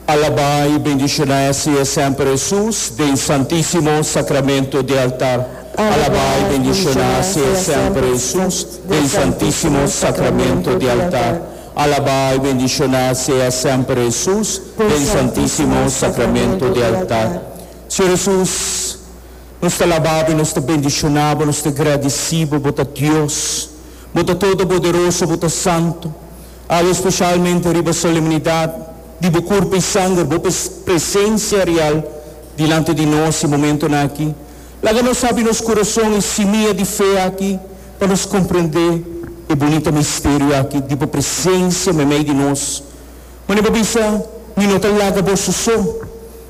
alabá i bendishoná e siñe semper Hesus den santísimo sakramentu di altar alabá i bendishoná e siñe semper Hesus den santísimo sakramentu di altar alabá i bendishoná e siñe semper Hesus den santísimo sakramentu di altar Señor Hesus nos ta alabá bo i nos ta bendishoná bo nos ta gradisí bo bo ta Dios bo ta todoboderoso bo ta santu. Awe speshalmente riba solemnidat di bo kurpu i sanger, bo presensia real dilanti di nos e momentonan aki, laga nos abri nos kurason i simia di fe aki pa nos komprendé e bunita misterio aki di bo presensia meimei di nos. Manera bo bisa, Mi no ta laga boso so,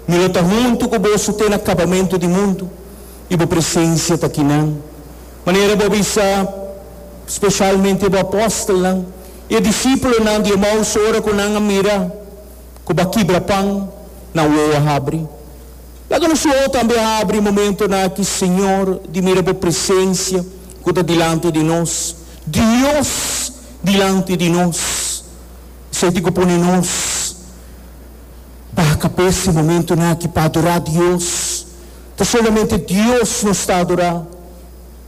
Mi lo ta huntu ku boso te na kabamentu di mundu, i bo presensia ta kinan. Manera bo bisa, spesialmente bo apostelnan i e disipulonan di Emaus ora ku nan a mira ku bo a kibra pan, nan wou a habri. Laga nos wou tambe habri momentunan aki, Señor, di mira bo presensia ku ta dilanti di nos, Dios dilanti di nos. Esei tin ku pone nos baha kapes e momentunan aki pa adorá Dios. Ta solamente Dios nos ta adorá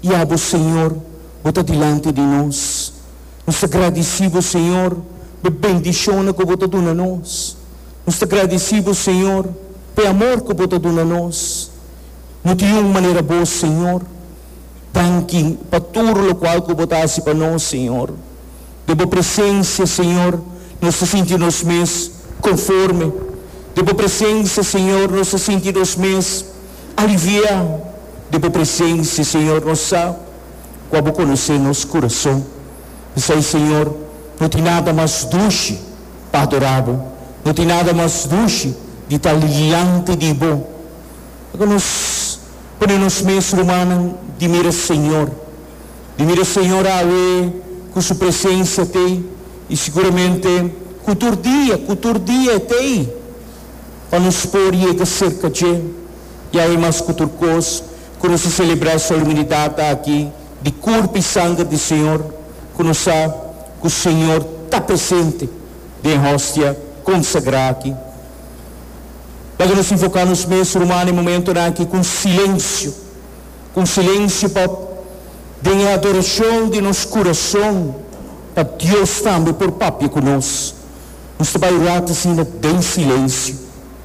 i abo, Señor, bo ta dilanti di nos. Nos ta gradisí bo, Señor, p'e bendishonnan ku bo ta duna nos. Nos ta gradisí bo, Señor, p'e amor ku bo ta duna nos. No tin un manera abos, Señor. Danki pa tur lokual ku bo ta hasi pa nos, Señor. Den bo presensia, Señor, nos ta sinti nos mes konforme. Den bo presensia, Señor, nos ta sinti nos mes aliviá. Den bo presensia, Señor, nos sa kua bo konosé nos kurason. P'esei, Señor, no tin nada mas dushi pa adorá bo, no tin nada mas dushi di ta liante di bo. Laga nos pone nos mes rumannan di mira, Señor. Mi mira Señor awe cu su presencia t'ey, y siguramente cu tur dia, cu tur dia e t'ey, pa nos por yega cerca dje. Y awe mas cu tur cos, cu nos a celebra solemnidad aki di Curp y Sanger di Señor, cu nos sa cu Señor ta presente den e Hostia consagra aki. Laga nos invoca nos mes, ruman, e momentonan aki cu un silencio. ku un silensiu pa den e adorashon di nos kurashon pa Dios tambe por papia ku nos. Nos ta bai orá ta sinda den silensiu.